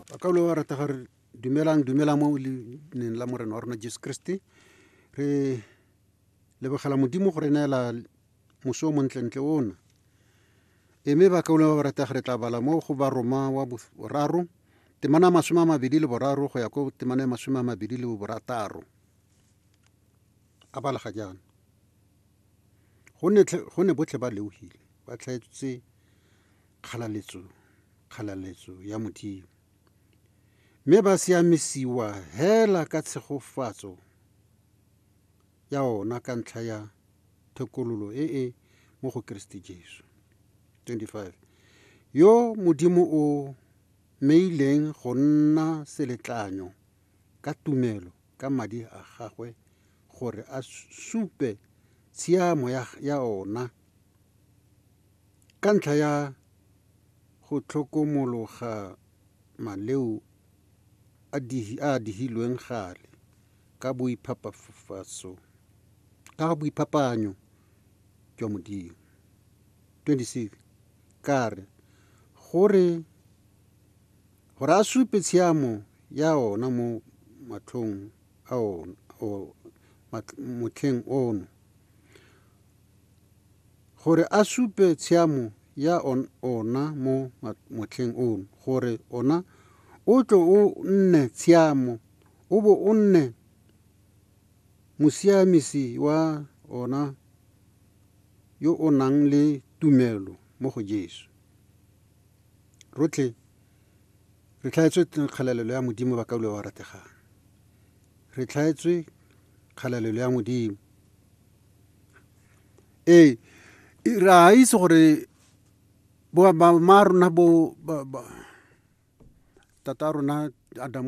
ba ka lo rata ga re dumelang dumela mo leineng la morena wa rona jesu kriste re lebogela modimo go re neela moso o montlentle ona e mme ba kauleng ba ba rata re tla bala mo go baroma wa boraro temana ya masome a mabedi le boraro go ya ko temana ya masome a mabedi le borataro a balega jaana go ne botlhe ba leogile ba tlhaetsetse kgalaletso, kgalaletso ya Modimo, mme ba siamisiwa hela ka tshegofatso ya ona ka ntlha ya thekololo e e mo go Keresete Jesu. 25 yo Modimo o meileng go nna seletlanyo ka tumelo ka madi a gagwe gore a supe tshiamo ya, ya ona Ka ntlha ya go tlhokomologa maleo a a digilweng gale ka boiphapaanyo jwa Modimo, 26 ka re, gore a supe tshiamo ya ona mo matlhong a ona, motlheng ono. gore a supe tshiamo ya ona mo motlheng ono, gore ona o tle o nne tshiamo, o bo o nne mosiamisi wa ona yo o nang le tumelo mo go Jesu. Rotlhe re tlhaetswe kgalalelo ya Modimo, bakaulwa ba rategang. Re tlhaetswe kgalalelo ya Modimo. ee re a itse gore ba rona bo tata rona Adamu.